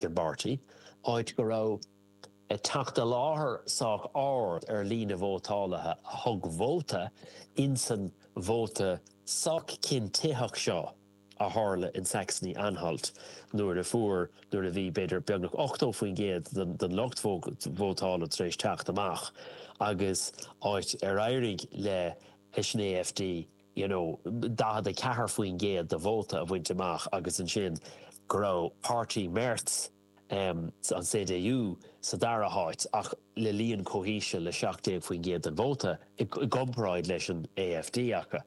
the Party, áit go raibh teacht i láthair sách ard ar líne vótálaithe a thug vóta insan vóta sách cinntitheach seo a tharla in Saxony-Anhalt nuair a fuair, nuair a bhí b'fhéidir beagnach 80% den lucht vótála tar éis teacht amach, agus áit ar éirigh le an AfD. you know, 44% de vóta a bhaint amach agus ansin go raibh páirtí Merz, em, an CDU sa dara háit ach le líon chomh híseal le 17% den vóta i gcomparáid leis an AfD acu.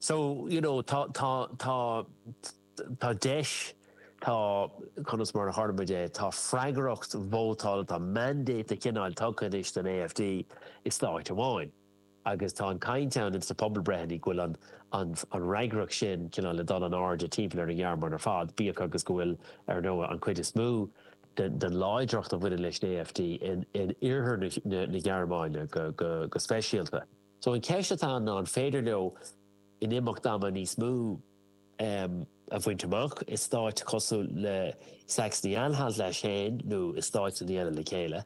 So, you know, tá, tá, tá, tá deis, tá, cén ainm a thabharfadh muid air, tá freagracht vótála, tá mandate de chineál tugtha anois don AfD i stáit amháin. agus tá an chaint ann sna pobalbhreitheanna go bhfuil an fhreagracht sin cineál le dul in airde timpeall ar an Ghearmáin ar fad, bíodh agus go bhfuil, ar ndóigh, an chuid is mó den láidreacht a bhaineann leis an AfD in iarthar na Gearmáine go speisialta. So an cheist atá ann ná an féidir leo in imeacht ama níos mó a bhaint amach i stáit cosúil le Saxony-Anhalt leis féin nó i stáit eile le chéile?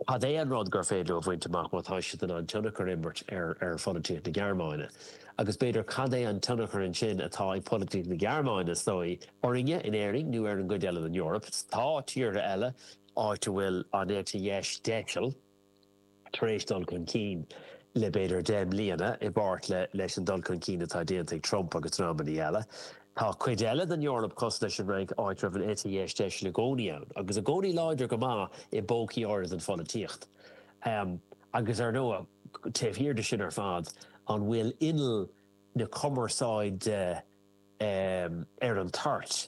Cad é an rud gur féidir leo a bhaint amach má tá siad in ann tionchar a imirt ar pholaitíocht na Gearmáine? Agus b'fhéidir, cad é an tionchar ansin atá ag polaitíocht na Gearmáine, is dóigh, orainne in Éirinn nó ar an gcuid eile den Eoraip? Is tá tíortha eile, áit a bhfuil an eite dheis deiseal, tar éis dul chun cinn le, b'fhéidir, deich mbliana, i bpáirt leis an dul chun cinn atá déanta ag Trump agus dreamanna eile. Tá cuid eile den Eoraip cosúil leis an Fhrainc, áit a raibh an eite dheis deisil i gcónaí ann, agus i gcónaí láidir go maith i bpócaí áirid den pholaitíocht. Agus ar ndóigh, taobh thiar de sin ar fad, an bhfuil inneall na cumarsáide ar an toirt?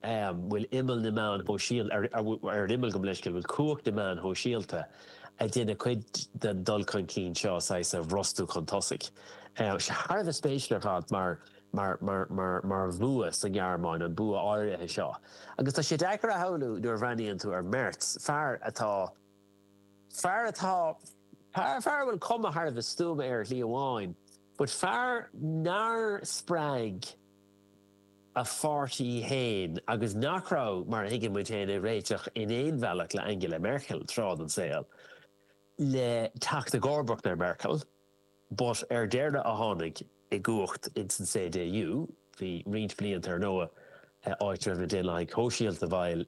An bhfuil ar an imeall gabh mo leithscéal? An bhfuil cumhacht na meáin shóisialta, ag déanamh cuid den dul chun cinn seo saghas a bhrostú chun tosaigh? Thar a bheith spéisiúil ar fad mar. mar bhua sa nGearmáin, an bua áirithe seo. Agus tá sé deacair a shamhlú, nuair a bhreathnaíonn tú ar Merz, fear atá, fear atá, fear, fear a bhfuil cuma thar a bheith stuama air ar shlí amháin, but fear nár spreag a pháirtí féin agus nach raibh, mar a thuigeann muid féin, ag réiteach in aon bhealach le Angela Merkel tráth den saol, le teacht i gcomharbacht ar Merkel. ba dheireanaí a tháinig i gcumhacht ins an CDU, bhí roinnt blianta ar ndóigh, áit a raibh na Daonlathaigh Shóisialta, bhuel,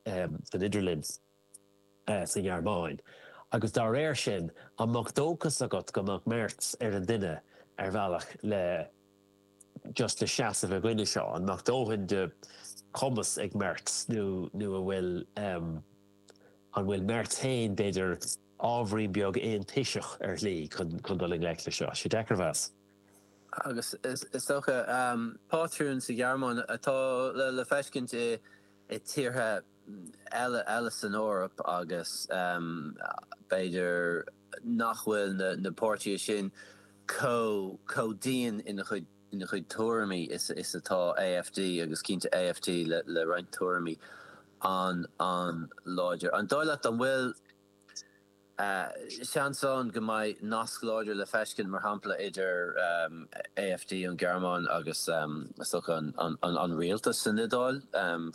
san idirlinn sa nGearmáin. Agus dá réir sin, an mbeadh dóchas agat go mbeadh Merz ar an duine, ar bhealach, le just le seasamh i gcoinne seo? An mbeadh dóthain de chumas ag Merz nó an bhfuil an bhfuil Merz féin, b'fhéidir, ábhairín beag aontoiseach ar shlí chun dul i ngleic leis seo. Sé deacair a mheas. Agus is dócha, pátrún sa Ghearmáin atá le feiscint i tíortha eile san Eoraip agus b'fhéidir nach bhfuil na páirtithe sin chomh dian ina gcuid. ina chuid tuairimí is atá AfD, agus cinnte AfD le roinnt tuairimí an an-láidir. An dóigh leat an bhfuil seans ann go mbeidh nasc láidir le feiscint, mar shampla, idir AfD ón Gearmáin agus is dócha an rialtas san Iodáil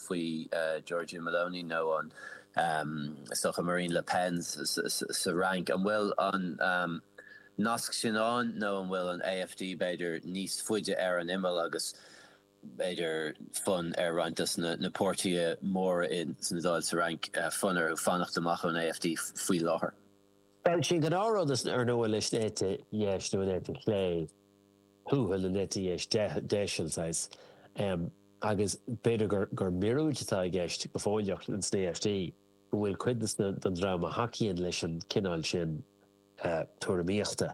faoi Giorgia Meloni nó an is dócha Marine Le Pen sa Fhrainc? An bhfuil an. Nasc sin ann nó an bhfuil an AfD, b'fhéidir, níos faide ar an imeall agus, b'fhéidir, fonn ar roinnt de na páirtithe móra san Iodáil, sa Fhrainc, fonn orthu fanacht amach ón AfD faoi láthair. Bhuel sin gnáthrud is ar ndóigh leis an eite dheis, nó an eite chlé thuathail, an eite dheis deiseal, saghas, agus b'fhéidir gur míorúilt atá i gceist go fóilleach in sna AfD, go bhfuil cuid den dream a thacaíonn leis an cineál sin, tuairimíochta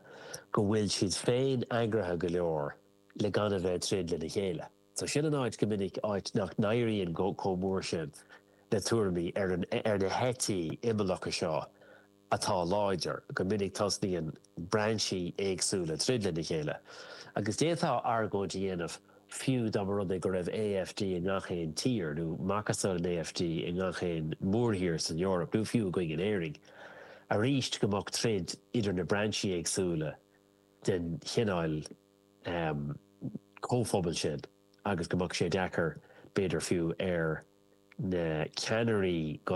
go bhfuil siad féin eagraithe go leor le gan a bheith ag troid lena chéile. So sin an áit go minic, áit nach n-éiríonn chomh mór sin le tuairimí ar na heití imeallacha seo atá láidir, go minic tosnaíonn brainsí éagsúla ag troid lena chéile. Agus d'fhéadfá argóint a dhéanamh fiú dá mba rud é go raibh AfD i ngach aon tír, nó macasamhail an AfD i ngach aon mhórthír san Eoraip, nó fiú againn in Éirinn, arís go mbeadh troid idir na brainsí éagsúla den chineál comhphobail sin agus go mbeadh sé deacair, b'fhéidir fiú, ar na ceannairí go